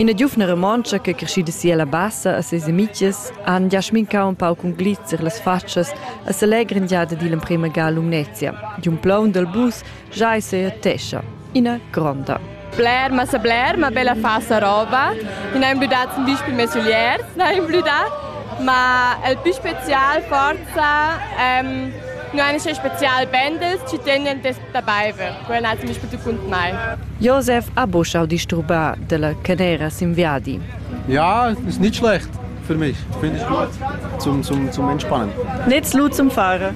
Ina giuvna romontscha che creschida si alla bassa a ses amitgs han gia smincau un pau cun glitzer las fatschas a selegrin giada digl emprema ga Lumnezia. Di un plaun dal bus Jai seetescha ina gronda. Bler, ma sa bler, ma bella fa sa roba. Ich habe blüdat zum Beispiel mes Oliers, ich habe blüdat, ma el più spezial forza ähm, nur eine spezial Bändels ci tenien des dabei ver. Quella ha zum Beispiel tu kunt mai. Josef ha buschau disturbà della canera simviadi. Ja, ist nicht schlecht für mich. Finde ich gut zum, zum, zum Entspannen. Nicht zu zum Fahren.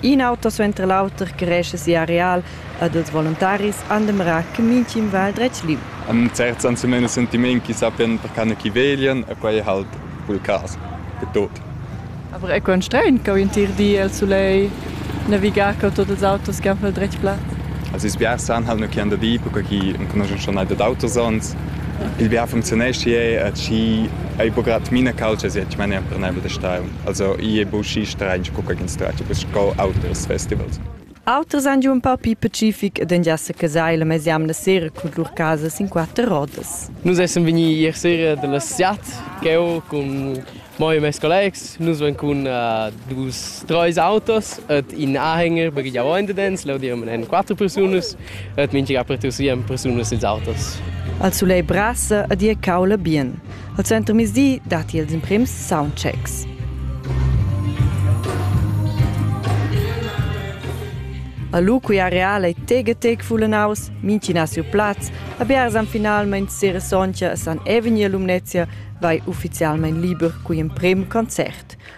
In auter suenter l'auter creescha sia areal ed els voluntaris han demrà che mintgin va al dretg lieu. An certs han semena sentiment chi sappian per cane chi veglian e quai è halt cul cas per tuot. Aber è quant strain che un tir di el sulei navigar co tots ils autos che han pel dretg plat? Also ils biars san halt nur chi han da dir, perché chi enconuschen schon nicht d'autos sonst. Il biar funzionesce e chi ei bograt mina calce, sie ich meine per nebel de stau. Also i è buchi stranch co ch'ins tratga bus sco auters festivals. Auters han giu in pau pli pacific ed engia secasai la mesjamna sera cun lur casas in quatter rodas. Nus essan vegni ier sera dalla siat, cheu cun moi e mes collegs. Nus van cun uh, dus, treis autos et in anhänger baghegiau endedens, leu diran en quatter persunas et mintga per tussien persunas ils autos. Al sulei brasa ed ia caula bien. Al suentermiezdi datti els emprims soundchecks. A lu cui areal ei tegetec fullanaus, mintgina siu plaz, a biars han finalmein sera sontga a San Eveni e Lumnezia vai ufficialmein liber cui emprem concert.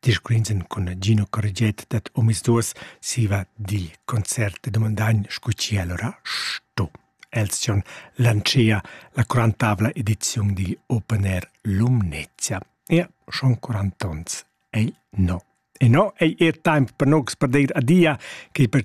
discurrins cun Gino Corget dad omisduas siva dil concert e domandagn scu chi allora sto. Els tion lancea la quarantavla ediziun digl Open Air Lumnezia. Ia schon quarantons ei no. E no ei er temp per nogs per deir adia che per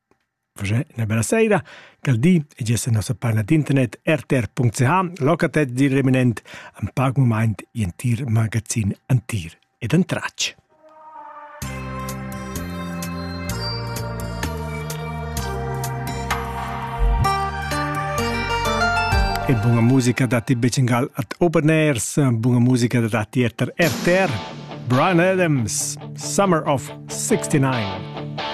Uschè üna bella saira. Quel di e giessa nossa parna d'internet rtr.ch located dil reminent ein pac mumaint i entir magazin antir ed entratg. E buona musica da ti Becingal at Open Airs, buona musica da ti RTR, Brian Adams, Summer of 69.